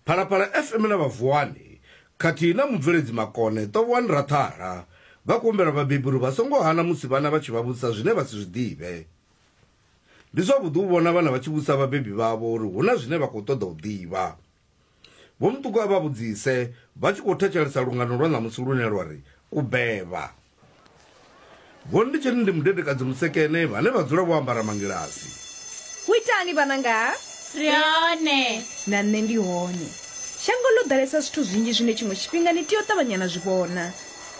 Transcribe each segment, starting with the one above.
Phalaphala FM na Vhavuwani khathihi na mubveledzi Makone Ṱovhoani Raṱhara vha khou humbela vhabebi uri vha songo hana musi vhana vha tshi vha vhudzisa zwine vha si zwi ḓivhe. Ndi zwavhuḓi u vhona vhana vha tshi vhudzisa vhabebi vhavho uri hu na zwine vha khou ṱoḓa u ḓivha. Vho Muṱuku a vha vhudzise vha tshi khou thetshelesa lungano lwa ṋamusi lune lwa ri, U Beba. Gonditsheni ndi mudedekadzi mutsekene vhane vha dzula vho ambara mangilasi. Hu itani vhananga? Ri hone. Na nṋe ndi hone. Shango ḽo ḓalesa zwithu zwinzhi zwine tshiṅwe tshifhinga ni tea u ṱavhanya na zwi vhona.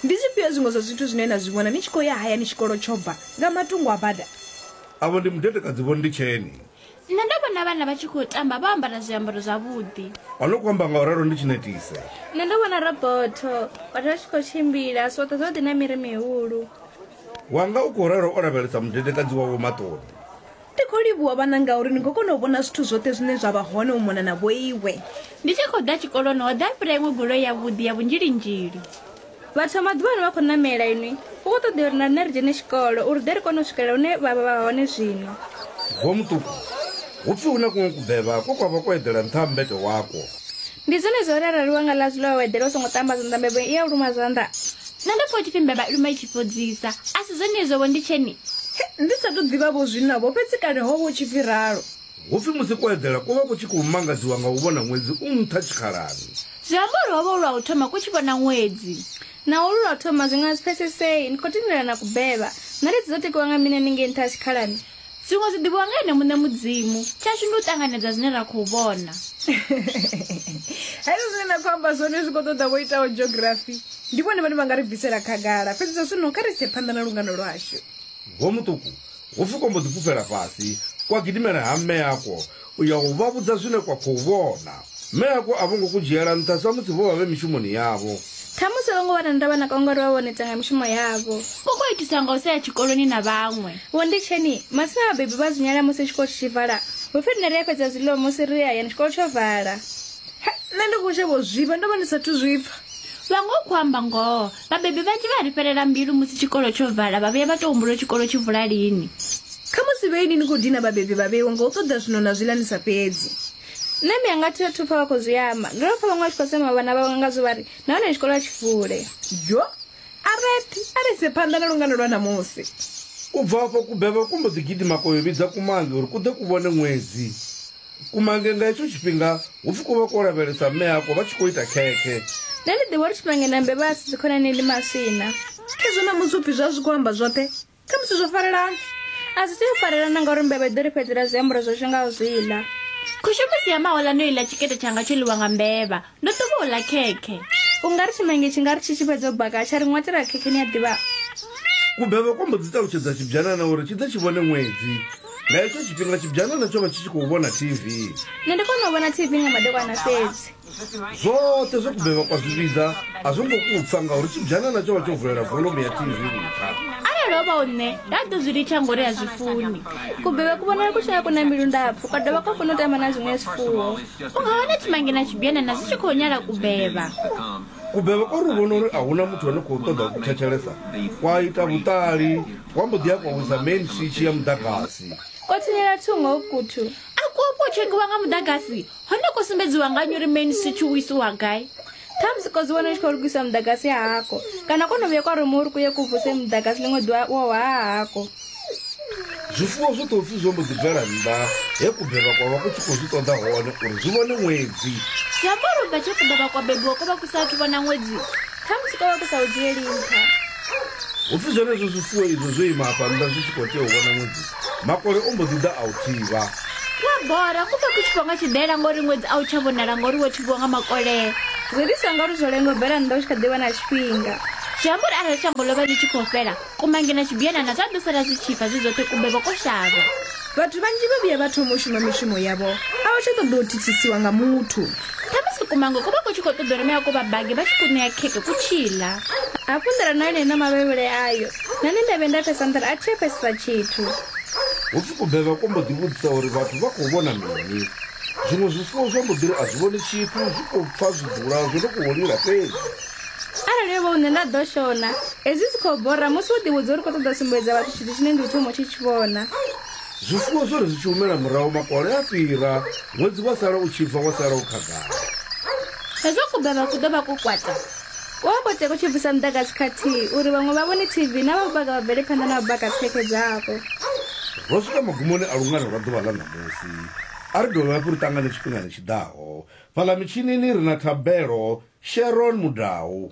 Ndi zwifhio zwiṅwe zwa zwithu zwine na zwi vhona ni tshi khou ya hayani tshikolo tsho bva nga matungo a bada? Avho ndi mudedekadzi Vho Nditsheni. nṋe ndo vhona vhana vha tshi khou tamba vho ambara zwiambaro zwavhuḓi a no khou amba nga u ralo ndi tshi netise nṋe ndo vhona robotho vhathu vha tshi khou tshimbila zwoṱhe zwo ḓi na miri mihulu wanga u khou ralo o lavhelesa mudedekadzi wawo maṱoni ndi khou livhuwa vhana ngauri ni khou kona u vhona zwithu zwoṱhe zwine zwa vha hone u mona na vhoiwe ndi tshi khou ḓa tshikoloni ho ḓa fhira iṅwe goloi yavhuḓi ya vhunzhilinzhili Vhathu vha maḓuvha ano vha khou ṋamela inwi. Hu khou ṱoḓea uri na riṋe ri dzhene tshikolo uri ri ḓe ri kone u swikelela hune vha vha vha hone zwino. Vho Muṱuku, hu pfi hu na kuṅwe kubevha kwe kwa vha kwo eḓela nṱha ha mmbete wakwo. Ndi zwenezwo uri arali wa nga ḽazwi ḽa wa wa eḓela u songo ṱamba zwanḓa mbevha i a u luma zwanḓa. Nṋe ndo pfa hu tshi pfi mbevha i luma i tshi fhodzisa. A si zwenezwo-vho, ndi tsheni? He, ndi sa tou ḓivha-vho zwino-vho, fhedzi kale ho vha hu tshi pfi ralo. Hu pfi musi ko eḓela ko vha ku tshi khou mangadziwa nga u vhona ṅwedzi u nṱha tshikhalani. Zwi amba uri ho vha hu lwa u thoma ku tshi vhona ṅwedzi. Naho lu lwa u thoma, zwi nga si pfesesee. Ni khou tendelana kubeba. Ṋaledzi dzo tikiwa nga mini hanengei nṱha ha tshikhalani? Zwiṅwe zwi ḓivhiwa nga Ene muṋe Mudzimu. Tshashu ndi u ṱanganedza zwine ra khou vhona. Hezwo zwine na khou amba zwone zwi khou ṱoḓa vho itaho geografi. Ndi vhone vhane vha nga ri bvisela khagala. Fhedzi zwa zwino kha ri ise phanḓa na lungano lwashu. Vho Muṱuku Ho pfi kwa mbo ḓi fhufhela fhasi kwa gidimela ha mme akwo u ya u vha vhudza zwine kwa khou vhona. Mme akwo a vho ngo ku dzhiela nṱha samusi vho vha vhe mishumoni yavho. Khamusi a vho ngo vha na ndavha na kwa ngauri vha vha vho neta nga mishumo yavho. Ku khou itiswa nga u sa ya tshikoloni na vhaṅwe. Vho Nditsheni, Matsina vhabebi vha a zwi nyala musi tshikolo tshi tshi vala. Hu pfi riṋe ri a fhedza zwiḽiwa musi ri ye hayani tshikolo tsho vala. He, nṋe ndi khou shavha u zwifha, ndo vha ndi sa athu zwi pfa. Vha nga u khou amba ngoho. Vhabebi vhanzhi vha ri fhelela mbilu musi tshikolo tsho vala, vha vhuya vha tou humbula uri tshikolo tshi vula lini. Khamusi vhe inwi ni khou dina vhabebi vha vheiwa nga u ṱoḓa zwiṋo na zwiḽa ni sa fhedzi. Nṋe ndi nga thi athu pfa vha khou zwi amba. Ndo no pfa vhaṅwe vha tshi khou sema vhana vhavho ngazwo vha ri, Nahone tshikolo a tshi vule. Dyo! A rethi a ri ise phanḓa na lungano lwa ṋamusi. U bva afho kubevha ku mbo ḓi gidima kwa yo vhidza kumange uri ku ḓe ku vhone ṅwedzi. kumange nga hetsho tshifhinga hu pfi ku vha ko lavhelesa mme ako vha tshi khou ita khekhe nṋe ndi ḓivha uri tshimange na mbevha a si dzikhonani ndi maswina khezwo na musi upfi zwa zwi khou amba zwoṱhe kha musi zwo farelana a zwi tea u farelana ngauri mbevha i ḓo ri fhedzela zwiambaro zwashu nga u zwi ḽa khushemusi ya mahola no iḽa tshikete tshanga tsho ḽiwa nga mbevha ndo ḓo vha u ḽa khekhe u nga ri tshimange tshi nga ri tshi tshi fhedza u baka tsha ri ṅwatela khekhe ni a ḓivha kubebe kwa mbo dzi ṱalutshedza tshibyanana uri tshi ḓe tshi vhone ṅwedzi nga hetsho tshifhinga tshibyanana tsho vha tshi tshi khou vhona tv nṋe ndi kona u vhona tv nga madekwana fhedzi zwoṱhe zwe kubebe kwa zwi vhidza a zwo ngo kupfa ngauri tshibyanana tsho vha tsho vulela volomu ya tv nṱha arali o vha u nṋe nda ḓo zwi litsha ngori a zwi funi kubebe ku vhonala ku tshi nga ku na mbilu ndapfu kwa dovha kwa funa u tamba na zwiṅwe zwifuwo u nga wana tshimange na tshibyanana zwi tshi khou nyala kubeba kubeba ko ri vhona uri a huna muthu ane khou ṱoḓa ku thetshelesa kwa ita vhuṱali kwa mbo ḓi ya kwa wisa main switch ya muḓagasi ko tsinyela thungo ukuthu a kuo kuo tshekiwa nga muḓagasi hone ko sumbedziwa nga nyuri main switch u isiwa gai thamusi kodzi wana tshi khou lugisa muḓagasi hako kana kono vhuya kwa ruma uri kuye ku vuse muḓagasi ḽiṅwe ḓuvha wo wa hako zwifuwo zwi ḓo pfhi zwo mbo ḓi bvela nnḓa he kubelwa kwa vha ku tshi khou zwi ṱoḓa hone uri zwi vhone ṅwedzi zwi amba uri ubva tshe kubelwa kwa bebiwa ko vha ku sa athu vhona ṅwedzi khamusi ko vha ku sa u dzhieli nṱha hu pfhi zwenezwo zwifuwo izwo zwo ima hafha nnḓa zwi tshi khou tea u vhona ṅwedzi Makole o mbo ḓi ḓa a u thivha. Ku a bora, ku pfa ku tshi fhwa nga tshidela ngori ṅwedzi a u tsha vhonala ngori wo thivhiwa nga makole. Zwi ḓisa ngori zwo lenga u bvela nnḓa u tshi kha ḓi vha na tshifhinga. Zwi amba uri arali shango ḽo vha ḽi tshi khou fhela, kumange na tshibianana zwa ḓo sala zwi tshi fa zwi zwoṱhe ku bebwa ko shavha. Vhathu vhanzhi vha vhuya vha thoma u shuma mishumo yavho, a vha tsha ṱoḓa u thithisiwa nga muthu. Khamusi kumange ku vha ku tshi khou ṱoḓa uri mea ku vha bage vha tshi ku ṋea khekhe ku tshi ḽa. Hafhu nḓilani ha ḽeneḽo mavhevhele ayo, Nṋe ndi ndavhe nda pfesa nḓila a thi a pfesesa tshithu. Hupfi kubevha ko mbo ḓi vhudzisa uri vhathu vha khou vhona mini. Zwiṅwe zwifuwo zwa mbo ḓi ri a zwi vhoni tshithu, zwi khou pfa zwiḓula zwo no khou lila fhedzi. Arali yo vha hu nṋe nda ḓo shona. Hezwi zwi khou bora musi wo ḓivhudza uri u khou ṱoḓa u sumbedza vhathu tshithu tshine ndi u thoma u tshi tshi vhona. Zwifuwo zwo ri zwi tshi humela murahu makole a fhira, ṅwedzi wa sala u tshi bva wa sala u khagala. Hezwo kubevha ku ḓo vha ko kwata. U a koteka u tshi bvisa muḓagasi khathihi uri vhaṅwe vha vhone TV na vha vhubaga vha bvele phanḓa na vhubaga dzikhekhe dzavho. Ro swika magumoni a lungano lwa ḓuvha ḽa ṋamusi. A ri dovhe hafhu ri ṱangane tshifhingani tshi ḓaho. Fhaḽa mitshinini ri na Thabelo Sharon Mudau.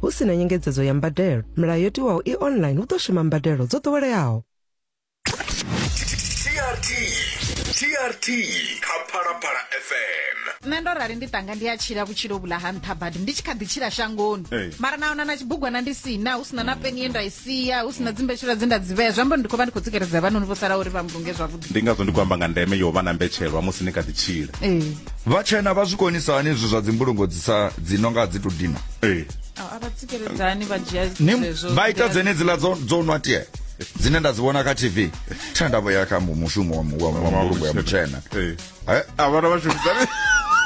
Hu si na nyengedzedzo ya mbadelo, milayo yo tiwaho i online hu ḓo shuma mbadelo dzo ḓoweleaho. TRT TRT kha Phalaphala FM nṋe ndo rali ndi tanga ndi a tshila vhutshilo vhula ha nṱha badi ndi tshi kha ḓi tshila shangoni Ee. mara na ona na tshibugwana ndi sina hu sina na peni ye nda i sia hu sina dzimbetshela dze nda dzi vhea zwi amba uri ndi khou vha ndi khou tsikeledza vhanoni vho sala uri vha mbulunge zwavhuḓi ndi ngazwo ndi khou amba nga ndeme yo vha na mbetshelwa musi ni kha ḓi tshila ee vhatshena vha zwi konisa hani izwi zwa dzimbulungo dzi sa dzi no nga dzi to dina ee a vha tsikeledzani vha dzhia ni zwezwo vha ita dzenedziḽa dzo dzo nwa tie dzine nda dzi vhona kha tv tha nda vho ya kha mu- mushumo wa mu- wa wa mbulungo ya mutshena ee Eh, a vhana vha shumisani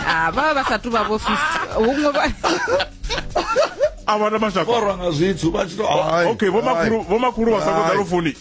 Ah, vha vha vha sa tu vha vho fisi huṅwe vha a vhana mashaka borwa nga zwithu vha tshi to ai, okay vho ai. makhulu vho makhulu vha songo Ai. ḓa lufuni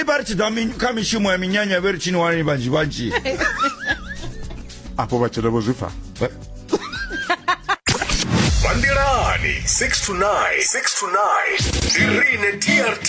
i vha ri tshi ḓa mi- kha mishumo ya minyanya vhe ri tshini wani vhanzhi vhanzhi afho vhatshelo vho zwi pfa Vha nḓilani 6 to 9 6 to 9 ndi rine TRT